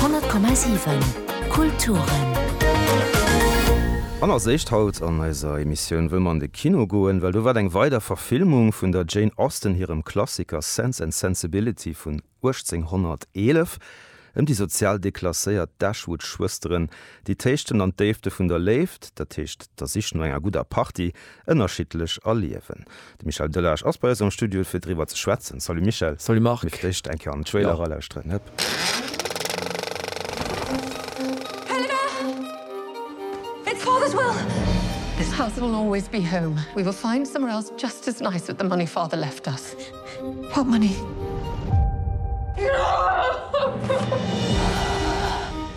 100,7 Kulturen. An als éischt haut an eiser Emissioun wëll mer an de Kino goen, well do waart eng weider Verfilmung vun der Jane Austen hirem Klassiker Sense and Sensibility vun 1811 ëm déi sozial deklasséiert Dashwood-Schwësteren, déi d'Héichten an d'Déifte vun der Léift, dat heescht der Sich no enger gudder Party, ënnerschiddlech erliewen. De Michel Delage ass bei eis am Studio fir driwwer ze schwätzen. Salut Michel. Salut Marc. Mir vläicht eng Kéier an den Trailer eralauschteren.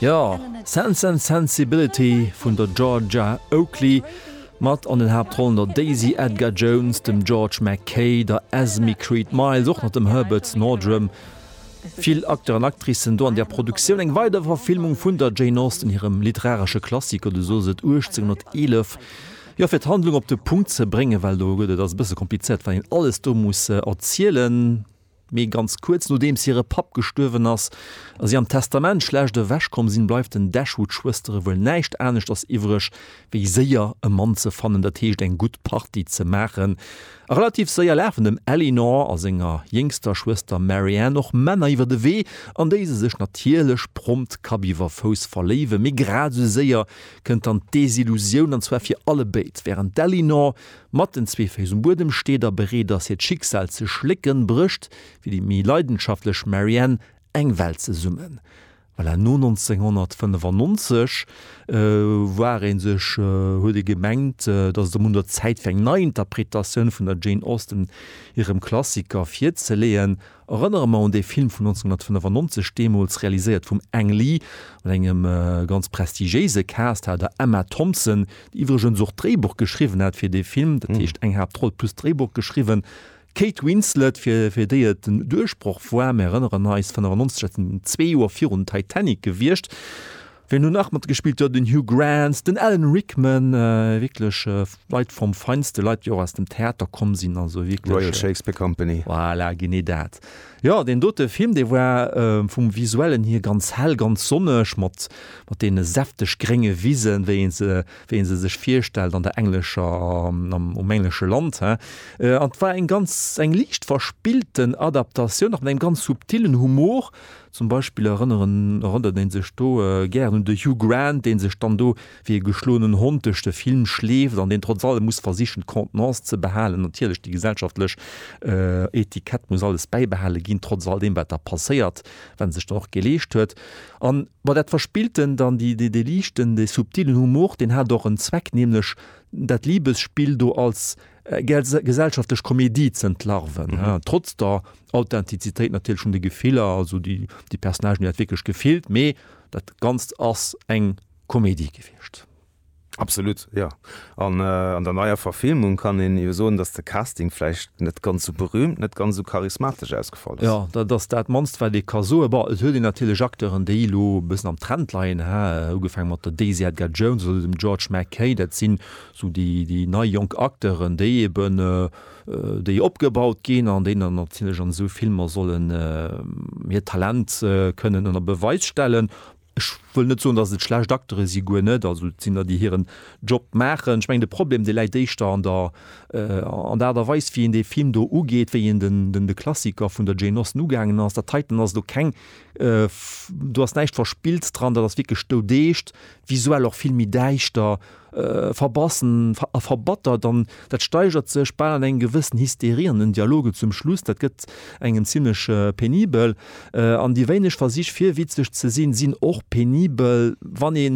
Jo, Sense and Sensibility vun der Georgia Oakley mat an den Haaptrollen der Daisy Edgar Jones, dem George McKay, der Esme Creed Miles, och nach dem Herbert Nordrum. Vill Acteur an Actricen do an der Produktioun. Eng weider Verfilmung vun der Jane Austen hirem literaresche Klassiker, du soss et, 1811. Jo, fir d'Handlung op de Punkt ze bréngen, well do gëtt et, ass e bësse komplizéiert, wat een alles do muss erzielen, mee ganz kuerz, Nodeems hire Papp gestuerwen ass a si am Testament schlecht ewech komm sinn, bleift den Dashwood-Schwëstere wuel näischt aneschters iwwreg, wéi séier e Mann ze fannen, dat heescht eng gutt Party ze maachen. A relativ séier lafen dem Eleanor a senger jéngster Schwëster Marianne och Männer iwwer de Wee, an déi se sech natierlech prompt Kapp iwwer Fouss verléiwen, mee grad esou séier kënnt dann d'Desillusioun, an zwar fir allebéid. Wärend d'Ellinor mat den zwee Féiss um Buedem steet a bereet ass hiert Schicksal ze schlécken, brécht fir déi méi leidenschaftlech Marianne eng Welt zesummen. Voilà, no 1995 war ee sech, huet ee gemengt, dass et erëm un der Zäit fir eng Neiinterpretatioun vun der Jane Austen hirem Klassiker virzeleeën. Erënnere mer un dee Film vun 1995, deemools realiséiert vum Ang Lee, mat engem ganz prestigiéise Cast, hat der Emma Thompson, déi iwwregens och d'Dréibuch geschriwwen hat fir dee Film, dat heescht eng Haaptroll plus d'Dréibuch geschriwwen, d'Kate Winslet, fir fir déi et den Duerchbroch war, mir erënneren eis, 95, dat sinn zwee Joer virun Titanic gewiescht. Wien do nach matgespillt huet, den Hugh Grant, den Alan Rickman, wierklech Leit vom Feinsten, Leit déi och aus dem Theater komm sinn, also wierklech. D'Royal Shakespeare Company. Voilà, genee dat. Jo, deen dote Film, dee war vum Visuellen hier ganz hell, ganz sonneg, mat deene säfteg grénge Wisen, wéi ee se, wéi ee se sech virstellt an der englescher, um englesche Land, he. An 't war eng ganz, eng liicht verspillten Adaptatioun, nach mat engem ganz subtillen Humor, Zum Beispill erënneren erënnert ee sech do gären un de Hugh Grant, dee sech dann do wéi e geschloenen Hond duerch de Film schleeft an deen trotz allem muss versichen, d'Contenance ze behalen. Natierlech, déi gesellschaftlech Etikett muss alles bäibehale ginn, trotz all deem, wat da passéiert, wat e sech dann och geleescht huet. An, bon, dat Verspilltent an déi, dee, dee liichten, dee subtilen Humor, deen hat och en Zweck, nämlech dat Liebesspill do als gesellschaftlech Komedie z'entlarven, trotz der Authentizitéit natierlech vun de Gefiller, also déi Personnagen déi dat wierklech gefillt, mee dat Ganzt ass eng Komedie gewiescht. Absolut, jo. An an der neier Verfilmung kann een jo soen, datt de Casting vläicht net ganz esou berüümt, net ganz esou charismatesch ausgefall ass. Jo, dat ass dat mannst wat ee ka soen. Bon, et huet een natierlech Acteuren déi elo e bëssen am Trend leien, ha, ugefaange mat der Daisy Edgar Jones oder dem George McKay, dat sinn esou déi nei jonk Acteuren déi eben, déi opgebaut ginn an déi natierlech an esou Filmer sollen hiert Talent kënnen ënner Beweis stellen. Ech wëll net soen, datt et schlecht Acteure si, guer net, also et sinn der, déi hiren Job maachen. Ech mengen, de Problem, dee läit éischter an der Aart a Weis, wéi een dee Film do ugeet, wéi een de Klassiker vun der Jane Austen ugaangen ass. Dat heiten ass elo keng, do ass näischt Verspillts dran, dat ass wierklech doudeescht, visuell och vill méi däischter, verbassen a verbattert an dat steigert sech bal an eng gewëssen Hysterie an den Dialogen zum Schluss. Dat gëtt engem zimmlech penibel an déi wéineg Versich fir witzeg ze sinn, sinn och penibel. Wann ee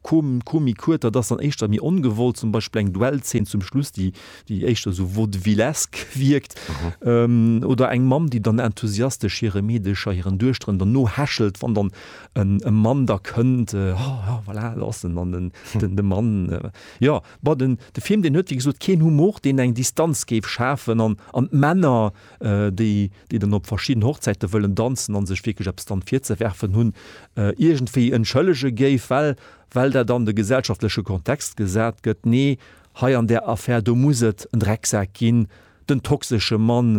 Komik huet, dat ass dann éischter méi ongewollt, zum Beispill eng Duellzeen zum Schluss, déi éischter esou vaudevillesk wierkt oder eng Mamm, déi dann enthusiastesch hire Meedecher, hiren Duechteren dann nohechelt, wann dann en e Mann da kënnt, oh ja, voilà, do ass en, an en, den, de Mann, jo, bon, den, de Film, deen huet, wéi gesot, keen Humor, deen eng Distanz géif schafen, an, an d'Männer, déi, déi dann op verschidden Hochzäite wëllen danzen an sech wierklech eppes dann virzewerfen hunn, iergendwéi entschëllege géif, well, well dat an de gesellschaftleche Kontext gesat gëtt. Nee, hei an där Affär, do muss et en Drecksak ginn, Den toxesche Mann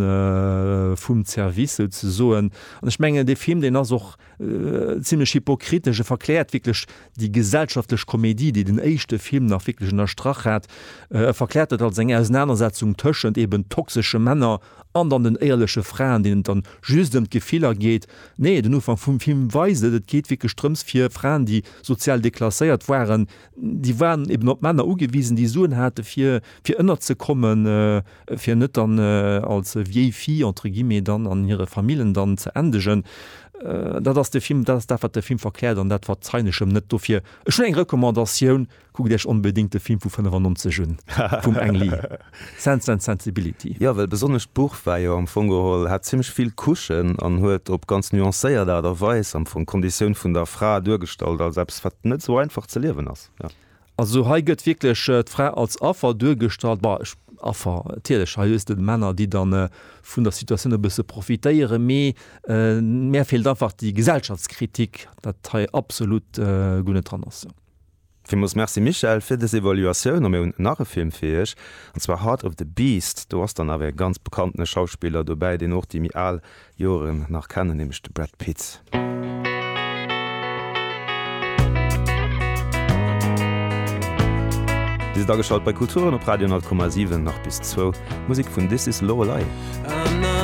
vum Zerwiss souzesoen. An ech mengen dee Film deen ass och zimlech hypokritesch. E verkläert wierklech déi gesellschaftlech Komedie, déi den éischte Film nach wierklech ënnerstrach hat. E verkläert dat als eng Ausenanersetzung tëschent eben toxesche Männer an dann den éierleche Fraen, deenen et dann just ëm d'Gefiller geet. Nee, den Ufank vum Film weist et, et geet wierklech drëms fir Fraen, déi sozial deklasséiert waren, Déi waren eben op Männer ugewisen, déi Suen hate fir fir ënnerzekommen, fir net dann als vieille fille entre guillemets dann an hire Famillen dann ze endegen. Dat ass de Film, dat ass dat wat de Film verkläert an dat wat d'Zeineschem net. Dofir ech hunn eng Recommandatioun, kuckt Iech onbedéngt de Film vu 95 un vum Ang Lee. Sense and Sensibility. Jo, well besonnesch d'Buch war jo am Fong geholl, hat zimlech vill Couchen an huet op ganz nuancéiert Aart a Weis am Fong d'Konditioun vun der Fra duergestallt als eppes, wat net esou einfach ze liewen ass. Jo. Also hei gëtt wierklech d'Fra als Affer duergestallt, bah, Affer, natierlech, hei hues de d'Männer, déi dann vun der Situatioun e bësse profitéieren, mee mär feelt einfach déi Gesellschaftskritik, dat hei absolut guer net dran ass. Villmools Merci Michèle fir des Evaluatioun a mir hunn nach e Film fir iech an zwar Heart of the Beast. Do ass dann awer e ganz bekanntene Schauspiller dobäi, deen och déi méi al Joeren nach kennen, nämlech de Brad Pitt. Dir sidd ageschalt bei Kulturen op Radio 10,7, nach bis zwou. Musik vun This Is Lorelei.